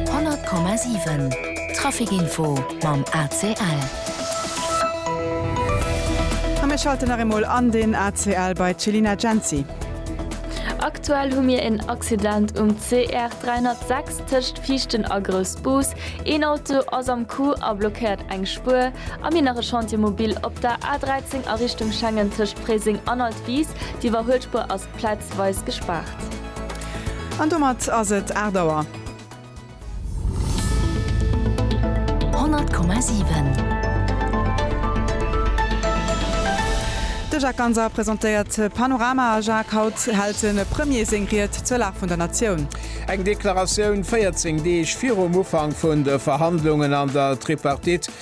100,7 Trafic Info mam ACL. A mir schalten nach eemol an den ACL bei d'Chelina Jency. Aktuell hu mir en Accident um CR 306 tëscht Viichten a Groussbus. Een Auto ass am Coup a blockéiert eng Spuer. A mir nach e Chantier mobil op der A 13 a Richtung Schengen tëscht Fréiseng an Altwis. D'Iwwerhuelspuer ass. Plaatzweis gespaart. An domat ass et 8 Auer. 100,7. De Jacques Ganser presentéiert Panorama. Jacques, haut hält de Premier seng Ried zur Lag vun der Natioun. Eng Deklaratioun 14 Deeg virum Ufank vun de Verhandlungen an der Tripartite.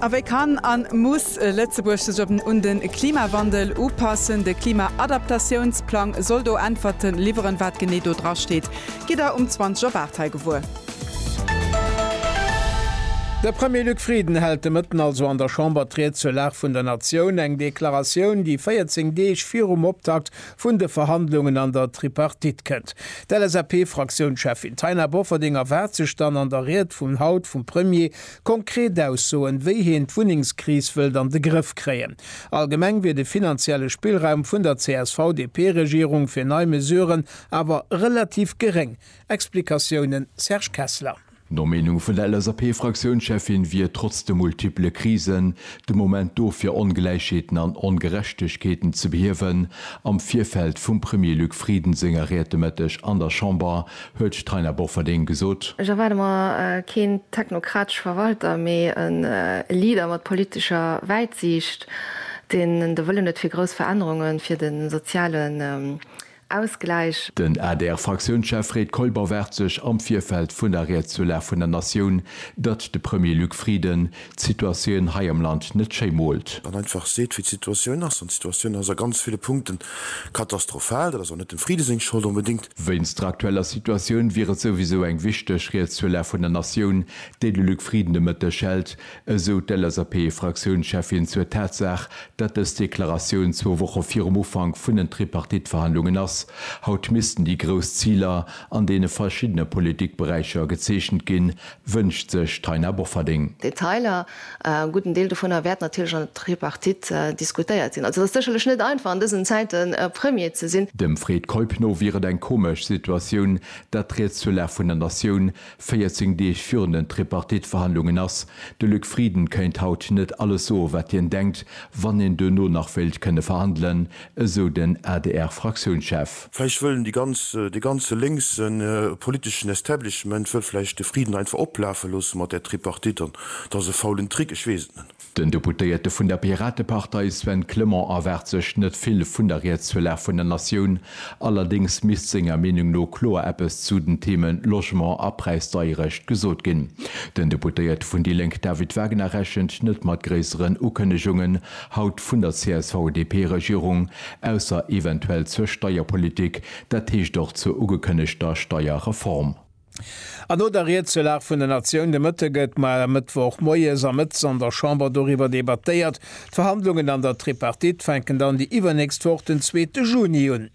A wéi kann an muss Lëtzebuerg sech un den Klimawandel upassen? De Klimaadaptatiounsplang soll do Äntwerten liwweren. Wat genee do dra steet, gitt der um 20 op 8 hei gewuer. De Premier Luc Frieden hält de Mëtten also an der Chamber d'Ried zur Lag vun der Natioun, eng Deklaratioun, déi 14 Deeg virum Optakt vun de Verhandlungen an der Tripartite kënnt. D'LSAP-Fraktiounscheffin Taina Bofferding erwaart sech dann an der Ried vun haut vum Premier, Konkret Aussoen, wéi hien d'Wunnengskris wëllt an de Grëff kréien. Allgemeng wier de finanzielle Spillraum vun der CSV-DP-Regierung fir nei Mesuren awer relativ geréng. Explikatiounen, Serge Kessler. No Meenung vun der LSAP-Fraktiounscheffin wier trotz de multiple Krisen de Moment do fir Ongläichheeten an Ongerechtegkeeten ze behiewen. Am Virfeld vum Premier Luc Frieden senger Ried de Mëtteg an der Chamber Huet d'Taina Bofferding gesot. Ech erwaarde mer keen technokratesche Verwalter, mee e Leader mat politescher Wäitsiicht, deen de Wëllen huet fir grouss Verännerunge fir de sozialen Ausgläich. Den ADR-Fraktiounschef Fred Keuper waart sech am Virfeld vun der Ried zur Lag vun der Natioun, datt de Premier Luc Frieden d'Situatioun hei am Land net schéi moolt. An einfach seet, wéi d'Situatioun ass. An d'Situatioun ass a ganz ville Punkte katastrophal. Dat ass och net dem Frieden seng Schold onbedéngt, Wéinst der aktueller Situatioun wier et souwisou eng wichteg Ried zur Lag vun der Natioun, déi de Luc Frieden de Mëtteg hält, esou d'LSAP-Fraktiounscheffin zur Tatsaach, datt dës Deklaratioun zwou Woche virum Ufank vun den Tripartite-Verhandlungen ass. Haut missten déi grouss Ziler an deene verschiddene Politikberäicher gezeechent ginn, wënscht sech d'Taina Bofferding. Detailer E gudden Deel dovunner wäert natierlech an der Tripartite diskutéiert ginn. Also et ass sécherlech net einfach an dësen Zäiten Premier ze sinn. Dem Fred Keup no wier et eng komesch Situatioun, datt d'Rieds zur Lag vun der Natioun 14 Deeg virun den Tripartite-Verhandlungen ass. De Luc Frieden kéint haut net alles soe wat hien denkt, wann een duerno nach wéilt kënne verhandelen, esou den ADR-Fraktiounschef. Vläicht wëll déi ganz, dee ganze lénkse politeschen Establishment wëll vläicht de Friden einfach oplafe loosse mat där Tripartite an et ass e faulen Trick, ech weess et net. Den Deputéierte vun der Piratepartei Sven Clement erwaart sech net vill vun der Rietswëllag vun der Natioun. Allerdéngs misst senger Meenung no kloer eppes zu den Theme Logement a Präisdeierecht gesot ginn. Den Deputéierte vun déi Lénk David Wagner rechent net mat gréisseren Ukënnegungen haut vun der CSV-DP-Regierung, ausser eventuell zur Steierpolitik, dat heescht och zur ugekënnegter Steierreform. An no der Ried zur Lag vun der Natioun de Mëtte gëtt mar e Mëttwoch moies a mëttes an der Chamber doriwwer debattéiert. D'Verhandlungen an der Tripartite fänken dann déi iwwernächst Woch den zweete Juni un.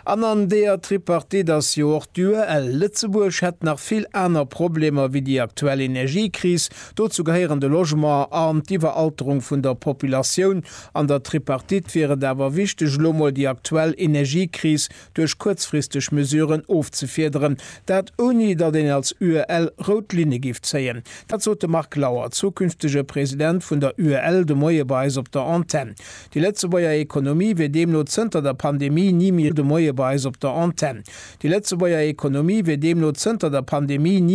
An an deeër Tripartite ass jo och d'UEL. Lëtzebuerg hätt nach vill aner Problemer wéi déi aktuell Energiekris. Dozou gehéieren de Logement an d'Iwweralterung vun der Populatioun. An der Tripartite wier et awer wichteg, elo mol déi aktuell Energiekris duerch kuerzfristeg Mesuren ofzefiederen. Dat ouni, datt een als UEL rout Linne giff zéien. Dat sot de Marc Lauer, zukünftege President vun der UEL, de Moie bei eis op der Antenn. Déi Lëtzebuerger Ekonomie wier deemno zënter der Pandemie ni méi. De Moie bei eis op der Antenn. Déi Lëtzebuerger Ekonomie wier deemno zënter der Pandemie ni.